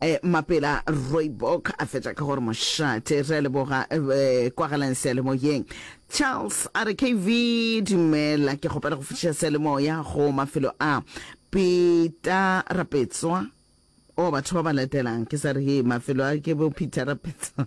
E, mapela Rooibok a fetša ka gore mošate. Re a leboga e, kwagalang seyalemoyeng. Charles a re KV dumela, ke kgopela go fetiša seyalemoya go mafelo a Pita Rapetswa o batho ba ba latelang ke sa re he mafelo a ke bo Peter Rapetswa.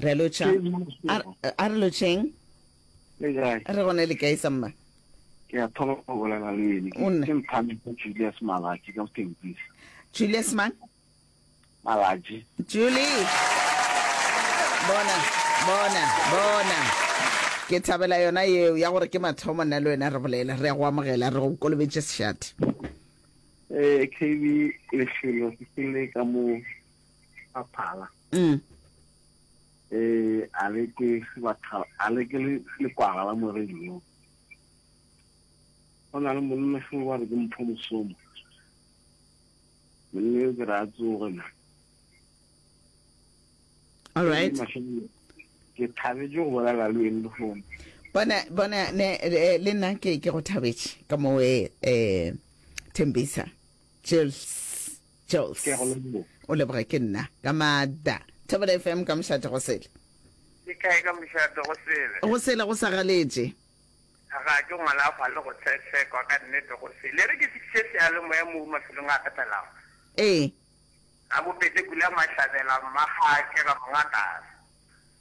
re lotšha a re lotšheng re gone le kae sa mma ke a thoma go bolela le ene ke mphane ke julius malaji ka botempisa julius mang malaji julie bona bona bona ke thabela yona yeo ya gore ke mathomo nna le wena re bolela re ya go amogela re go kolobetse sešate um kb lefelo ke le ka moo a phala mm. eh a le ke batho a le ke le le kwala la moreno go na le monna se wa re ke mpho mosomo monna yo ke re a tsoge na all right ke thabetse go bolela le wena lefono bona bona ne eh, le nna ke ke go thabetse ka mo eh, eh thembisa Jels, Ke a go leboga. o leboge ke nna. Ka maatla. Thobela FM ka mošate go sele. Ke kae ka mošate go sele? Go sele go sa galetše. Ga ke ngwala fa le go tshetshekwa ka nnete go sele. E re ke fihliše seyalemoya moo mafelong a kgathalago. Ee. Ga bobete Pula Mahlabela, Mmaga Kega Mongakase.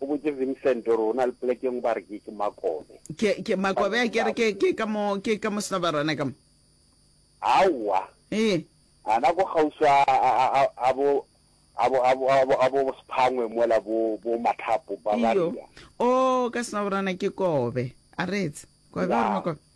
O botše Vincent gore o na le poleke engwe ba re ke ke Makobe. Ke, ke Makobe a kere ke, ke ka mo, ke ka mo Snobarona ka mo. Aowa. Ee. Ana ko kgauswi a, a, a, a, a bo, a bo, a bo, a bo, a bo Sephangwe mola bo, bo Mathapo, Iyo. Bavaria. Oo, ka Snobarona ke Kobe. A reetse. Kobe, o re Naa, Makobe.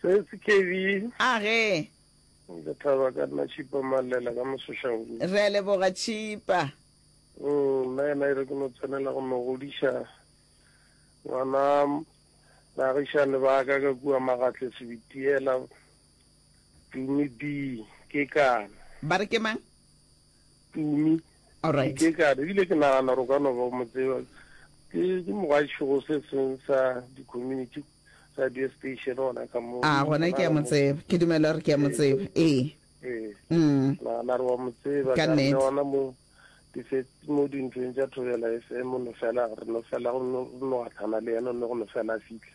Se se kebi. A ge. Nka thaba ka nna Tšhipa Malela ka Mosošahudu. Re a leboga Tšhipa. Mm, nna yena ere ke no tsenela go no godiša ngwana bagišane ba ka ka kua Magatle Sebitiela Dumi B. Ke kana. Ba re ke mang? tumi ke ka re ebile ke nagana gore o ka no ba mo tseba ke ke mogwašogo se seng sa di-community radio station ona ka mo a gona ke a mo tseba ke dumela gore ke a mo tseba ee ee mm. nagana re wa mo tseba Ka ka nnete. re ona mo dife- mo dintlong tša thobela fm o no fela re no fela go no go no gatlhana le yena o ne go no fela a fitlha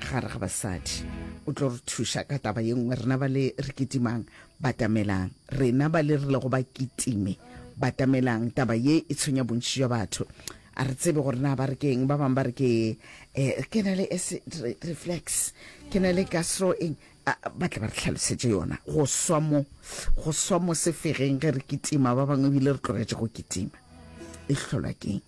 gare ga basadi o tlo re thuša ka taba ye nngwe rena ba le re kitimang batamelang rena ba le re lego ba kitime batamelang taba ye e tshwenya bontši jwa batho a re tsebe gore na ba re keng ba bangwe ba re ke eh, ke na le reflex ke na le gastro eng ba tle ba re tlhalosetse yona go swa mo go swa mo sefegeng ge re kitima ba bangwe ebile re tlogetše go kitima e tlholwa keng